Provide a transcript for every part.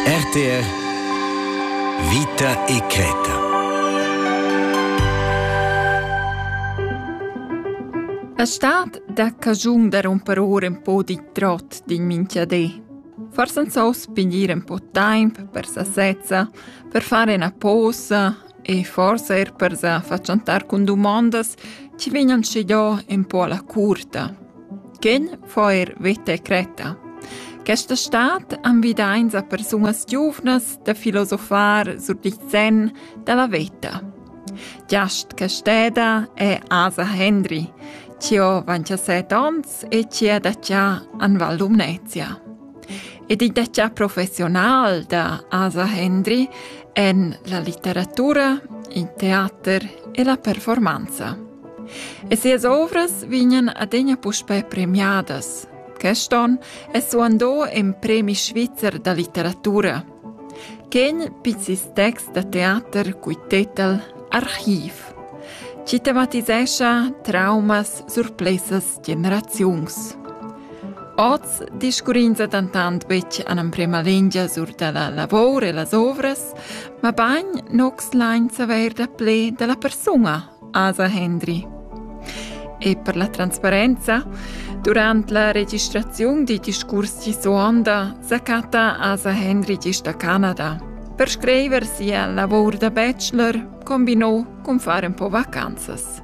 RTR Vita e creta. A stad da cagiun da romper ora un po di trot din minchiadé. Forse non so spingere un po' tempo per sasezza, per fare una posa e forse er per sa facciantar con domandas ci vegnan scegliò un po' alla curta. Ken fa eir veta e cretta. Questa stad invidains a persunas giuvnas da filosofar sur il sen da la veta. Giast Casteda è Asa Hendry, chi ho 27 ons e chi ha da già an Val Lumnezia. Ed il detg professional da Asa Hendry en la litteratura, il teater e la performanza. E sias ovras vegnan adegna puspè premiadas. Queston è suandò en premi svizzer da litteratura. Quegl pizzis text da teater cui tetel Archiv. Ci tematisescha traumas surplesas generaziuns. Oz discurrins dentant betg en emprema lingia sur da la lavor e las ovras, ma bagn nox lain saver da ple da la persuna, Asa Hendry. E per la transparenza, durant la registraziun di discurs di suonda sacata Asa Hendry gist a Canada. Per scriver sia lavor da bachelor combinò con fare un po' vacanzas.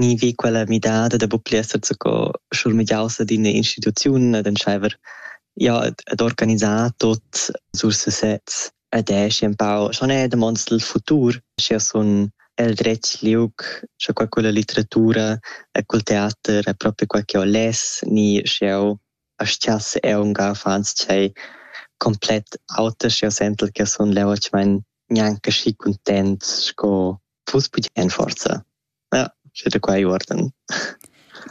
ni vi quella midada da buc pli esser zaco schurmegiaus ad ina instituziun ad entscheiver ja ad organisar tot sur sesez ed eschi empau schon è damonds del futur sche sun el dretg liug sche quella litteratura e col teater è proprio quel che ho les ni sche eu astiass eu unga fans tschei komplett auter sche eu sentel che sun leu ich mein gnanca schi content sco fuss bugen forsa. Ja, sche da quei uorden.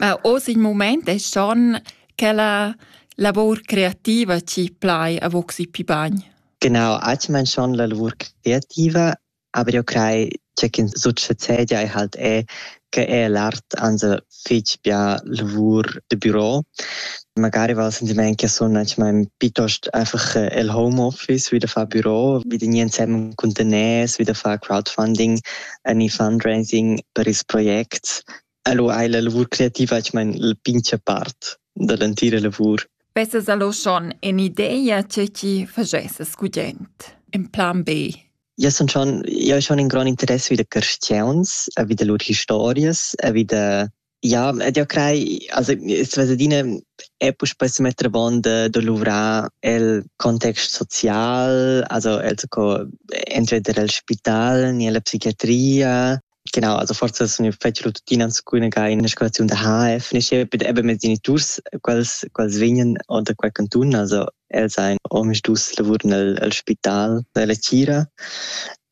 Ma oz il moment è schon che la lavor creativa ci plai a voxi pi bagn. Genau, ich mein schon la lavor creativa, aber io crei, c'è che succedia e halt è che è l'art anse fich bia lavur da büro. Magari val sentimaint che sun manchmal piuttost einfach äh, el Homeoffice wie da far Büro, wie da nie zusammen contener, wie da far Crowdfunding, ani fundraising per ils projects. Allo hai la lavur creativa manchmal la pincha part da l'entira lavur. Vesses allo schon in ideia che ti fagesses gudent, in plan B? Jau sun schon, jau schon in grond interess vi da carstgauns, vi da lur historias, vi da... Ja, ed jau crei, also es adina è puspei se metter avon de, de luvrar el context social, also el co entweder el spital ni la psichiatria, Genau, also forse sono piaciuto tuttina alcune che in escolazione da HF nasceva eben mit genitors quels quels vegnan da quel canton, also els ein omisdus lavurn el, el spital della Cira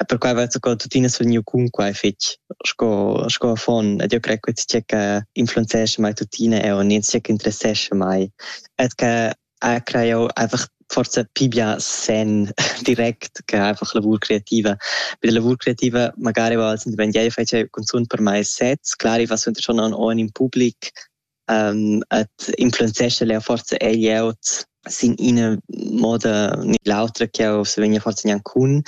e per quai va sco tuttina sul gneu cun quai fetg sco sco affon ed io crei che tgè che influenzesce mai tuttina e o nen tgè che interessesce mai et che Ah, crei jau einfach forsa pli bia senn direct che einfach lavur creativa. Bei der lavur creativa magari va el sentiment, ja, io faccio cunzunt per mai sets, clar, ich war so schon an ohren im Publik, ähm, et influenzesce le forza egli out sin ina moda ni l'autra che jau se vegna forza gnanc cun,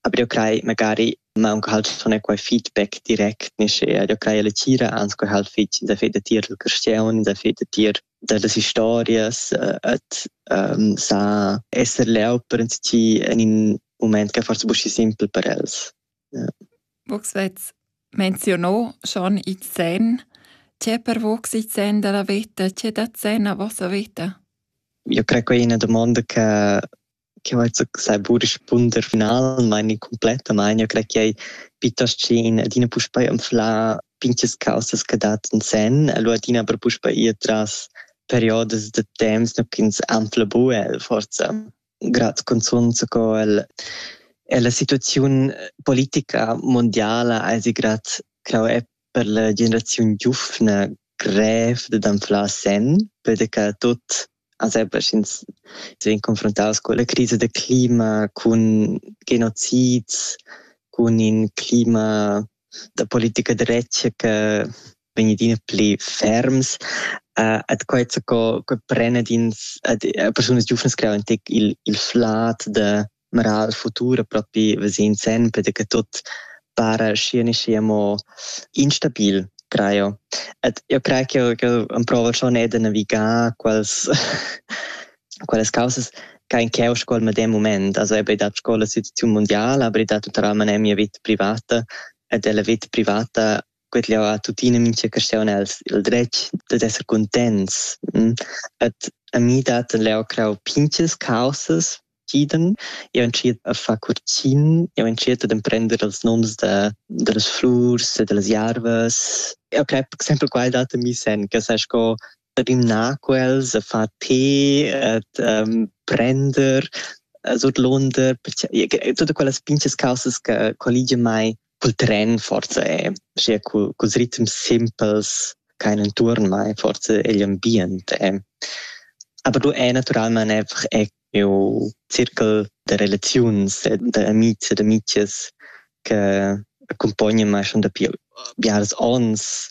aber io crei magari ma un halt schon e quai feedback direkt nisce, io crei la tira ans quai halt fitg da fe da tier il cresceun, da fe da tier da las historias uh, et um, sa esser leu per ti en in moment che forse buschi simpel per els. Ja. Vux vez menzionò schon i zen. C'è per vux i zen della vita? C'è da zen a vostra vita? Io credo che è una domanda che che vai sai pur rispunder final meini complettamain ja crei ch'ei piuttost schin adina puspei anfla pinches causas che dat in sen e lu adina per puspei ir tras periodas da temps ne ch'ins anfla bu el forza grad consonant co el e la situaziun politica mondiala eisi grad crau è per la generaziun giufna grev da anflar sen perché tot Sempre sch'ins vegn confrontaus culla crisa da clima, cun genocids, cun in clima da politica da retg che vegn adina pli ferms, uh, et quai co, co pren ad ins, ad, a persunas giuvnas creau in tec il, il flat de Mera il futur propi vesend sempre che tut para schi ne schi amo instabil traio. Ed io craj ch'eau ch'eau amprouval schon eir da navigar quels quellas causas cha in ch'eau scoul medem mument. Also eau be dat scoula situaziun mundiala, aber i dat natüralmaing eir mia vita privata ed la vita privata quet'jeu ha tuttina mintga caschaun els il dretg dad esser cuntents. Et a mi dat leu crau pinches causas entschieden. Jeu entschiet a far curtgin, jeu entschiet ad emprender els noms da, dallas flurs e dallas jarvas. Eu crep sempre quai dat a mi sen, che sai sco rimnar quels, a far tee, ad um, prender, surdlonder, tutte quelle pinches causes che collige mai cul tren forsa è sia cul, culs ritms simpels ch'hain intuorn mai forsa igl ambient è. Aber du è natüralmaing einfach eir miu circul da relaziuns e da amics ed amichas che accumpognan mai schon dapi biares ons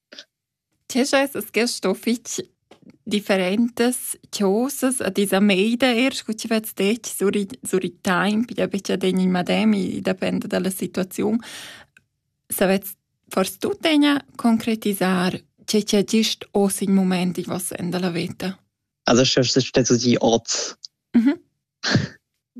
Tg'eschas es gest sto fich differentas chosas a ti sa meida eir scu chi vets detg sur i sur i taimp, i da betg adegna il madem, i dapenda da la situaziun. Savets fors tuttegna concretisar che chi agist hoz in mumaint in voss sen da la veta. Also sche stesso di ot. Mh-mh.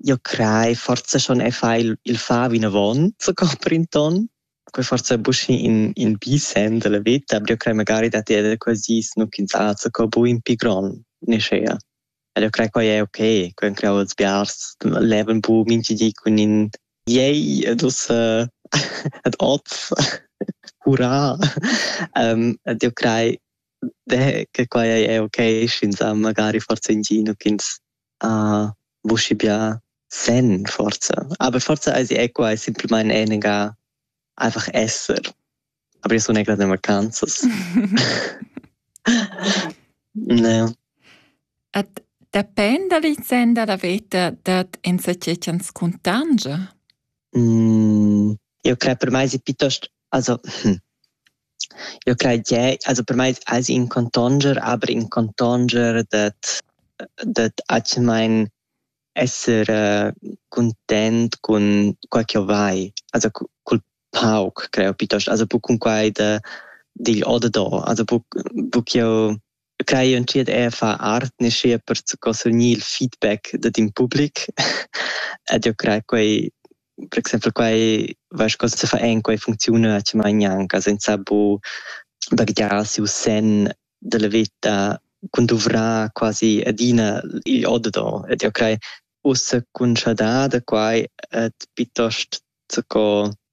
Io crei forsa schon e fai il il far vinavant, so copri ün ton. Poi forsa buc in in bi senn dalla veta, aber io crei magari da ter quels dis nu ch'ins azzaca buc in pi gron neschea. Ed io crei quai è ok, quai creau els biars levan buc minchi di cun in Yay ed ussa ed oz hurra. ed io crei che quai è ok, sch'ins ha magari forsa in di nu ch'ins vuschi bia sen forsa. Aber forsa eisi eco ei simplemain enega einfach esser. Aber io sun egra de vacanzas. ne. Et depend da licenda da veta dat enzatgei ans cuntangia? Mm, io crei per mai si piuttost Also eu crai che also per mai ais in contonger, aber in contonger dad dad atgemaing esser cuntent cun quai ch'eu vai, also cul pauc creo, pietost, also buc cun quai da digl o da do, also buc buc ch'eu Quai entschiet era far art neschia per co surgnir il feedback dad in public ed jeu crei quei per exempel quei was cosa se fa en quei funcziuna actualmein gnanca senza bu baghegiar siu senn dalla veta cun duvrar quasi adina igl oddador ed jeu crei ussa cun schadar da quai ed piuttost co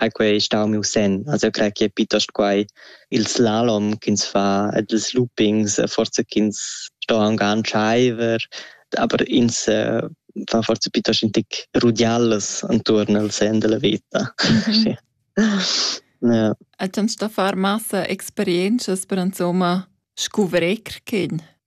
ha quei stau miu senn. Also eu crei che è piuttosto quai il slalom ch'ins fa ed ils loopings, forza ch'ins sto aunc antscheiver, aber ins äh, fa forza piuttosto in tic rudiallas anturn al sen della veta. Mm -hmm. ja. Eit ans da far massa experienzas per insomma scuvrir quin.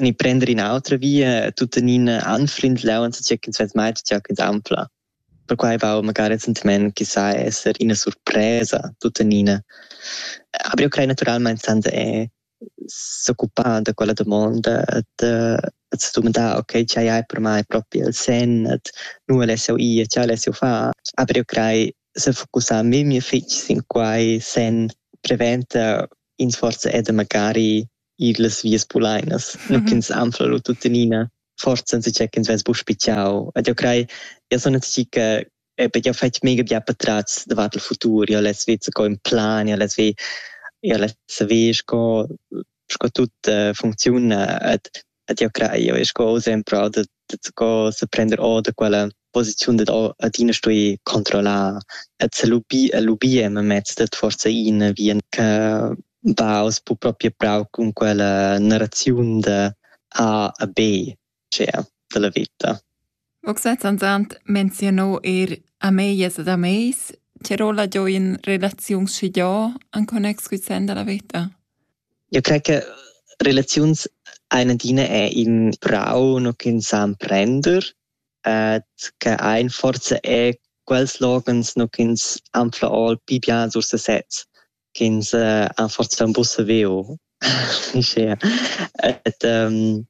ni prender in'autra via tuttenina anflindlau enzatgei ch'ins vess mai stuiu anflar. Perquai va magari recentemente che sa esser ina surpresa tuttenina. Aber io crei naturalmente senza è s'occupar da quella domanda da att domandar, ok, ce hai per mai proprio il sen, att nu alessio ir, ce alessio far. Aber io crei se focussar memia fitg sin quai sen preventa in forza ed magari ir las vias pulainas, mm -hmm. ch'ins anfla lu tuttenina, forza enzacha ch'ins vess buc spitgau. Ed eu crei, eu son atsi che perché eu fetg mega bia patratgs davart il futur, eu les ved sco in plan, eu les ved eu les saver sco sco tut uh, funcziuna ed Ed jau crai, jau sco exempel da, da, sco sa prender or da quella posiziun dad adina stuì controllar e lubir, lubir mez dat forsa in vien che va oz bu proprio prau cun quella narraziun da A a B, cioè, della vita. Oxatantant menziunò eir ameglias ed ameis ch'eir ho laggiò in relaziun schigià in connex cul sen da la veta. Eu crai che relaziuns hain adina eir ün prau no ch'ün sa emprender ed che hain forsa eir quels loghens no ch'üns han fla ol pi bien sur sesez. ch'ins ha forsa buca saviu uschia. Et um,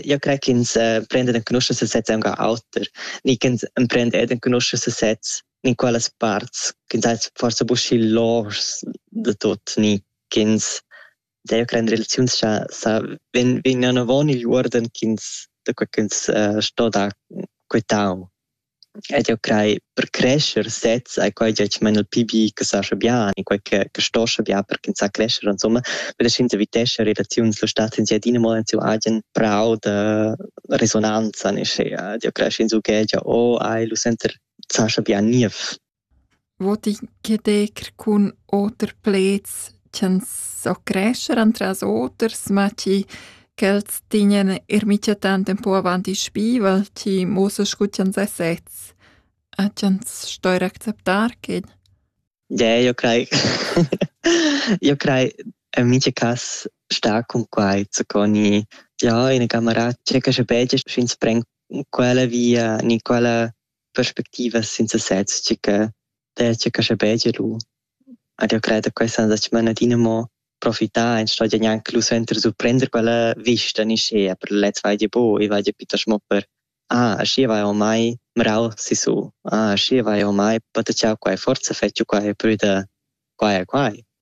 io crei ch'ins prenda en conoscenza sesez aunc auter, ni ch'ins emprenda ed en conoscenza sesez in qualas parts ch'ins ha forsa buca loschs da tut, ni ch'ins deve creare relazioni sa sa vegnan avon igl uorden ch'ins da quei ch'ins uh, sto dar quei tau. Ed eu craj per crescher sezs ei quai gia tschmain il pi bi che sascha bian e quai che che stoscha bian per ch'ins sa crescher insomma, per che ins evitescha relaziuns. Lo stat ins adina mo en siu agen prau da resonanza, nischi ed eu cresch insumma che gia oh ei lu sentir sascha bian niev. Vot i ch'eder cun oter pleds ch'ans so crescher antras oters, ma chi ch'els tignan eir micha tant ün po avant il spivel, chi muossa scu ch'ans es sezs e ch'ans stoir acceptar quel. Deh, io craj io craj in mincha cas stà cun quai zucò gnì ja ina camarà tschecca sche pegia, sch'ins pren quella via gnü quella perspectivas sin sesez tgi che detg che sche begie lu ed io cred che questa da manadina mo profità en sto gnanc lu senter surprender quella vista ni schea per lez vai di bo e vai di pitter mo per ah schi vai ormai mrau si su ah schi vai ormai patachau quai forza fetg quai prüda quai quai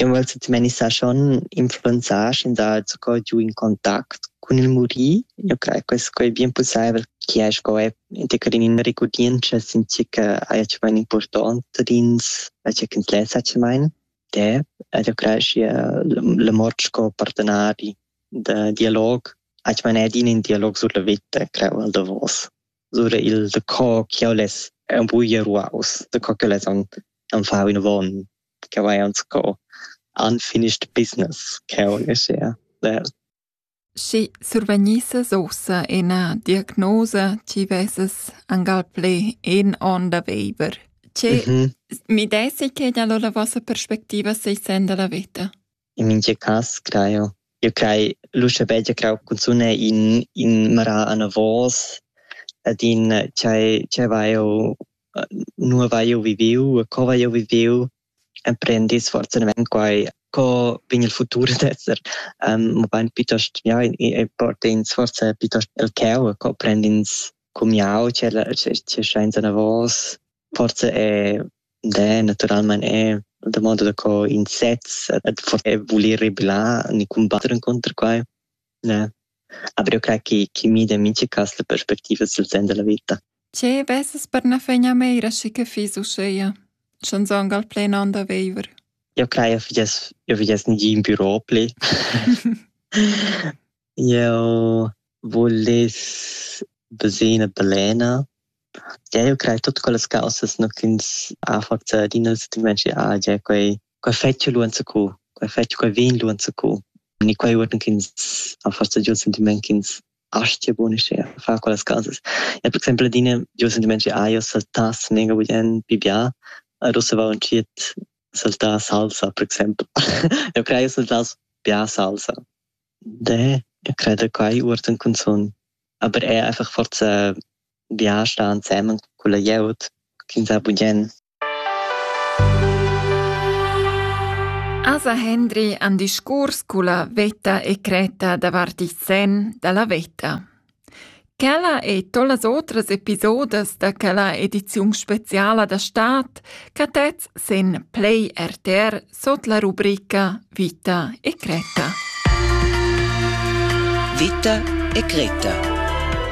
Eu vel tuttenina sar schon influenzar schi da sco giu in contact cun il murir. Eu craj che sco ei bien pussaivel chi ei sco è integra in ina regurdientscha since che haja tü main important dins che ins lessa tü main. De, ed eu craj schi la mort sco partenari da dialog ach man ed in in dialog sur la vita creu al davos sur il de co che less un buia ruaus de co che less an an fau in von ch'eu hajan sco unfinished business ch'eu leschea der. Schi survagnisses uossa üna diagnosa chi vessas angal plü in on da viver. Che mi dessi che gnà lura vossa perspectiva seis sen da la vita? In mintga cass crai jeu. Jeu crai l'uschè bel ch'jeu crau cunzun è in, in marà anavos ed in tgei, tgei vai jeu, nua vai jeu viviu e co vai jeu viviu. Emprendis fortunadamain quai, co vegn il futur ad esser, mabain piuttost, ja, e port'ins forsa piuttost el cheu, co prend'ins cumiau, tgei tgei schains anavos. Forse è det naturalmein è da modo da co in sez et forse è voler rebellar ni combatter inconter quai ne aber eu crei chi chi mida in mincha cas la perspectiva sul sen della vita Tge vesas per na fegna meira schi che fiss uscheia, sch'anzong al plen an da veiver? Eu crei eu fiess eu fiess nigin bürò pli. Eu vuless bösir üna balena. Eu craj tuot quellas causas no ch'ins ha forsa adina il sentimaint che ah già quai quai fetsch lu enzacù, quai fetsch quai vin lu enzacù. E quai uorden ch'ins ha forsa giò il sentimaint ch'ins astia bun uschea far quellas causas. Ja per exaimpel adina giò il sentimaint che ah, eu saltass mega bugn pi bia, ad ussa vau entschiet saltar salsa per exaimpel. Eu craj eu saltass bia salsa. De, io creda quai uortan cunzun. Aber eir einfach forza viager sta ansemen culla glieud chi'ns ha bugien. Asa Hendri han discurs culla vetta e cretta davart il sen da la vetta. Quella ei tollas otras episodas da quella ediziun speciala da stad catets sin Play RTR sut la rubrica Vita e Greta. Vita e Greta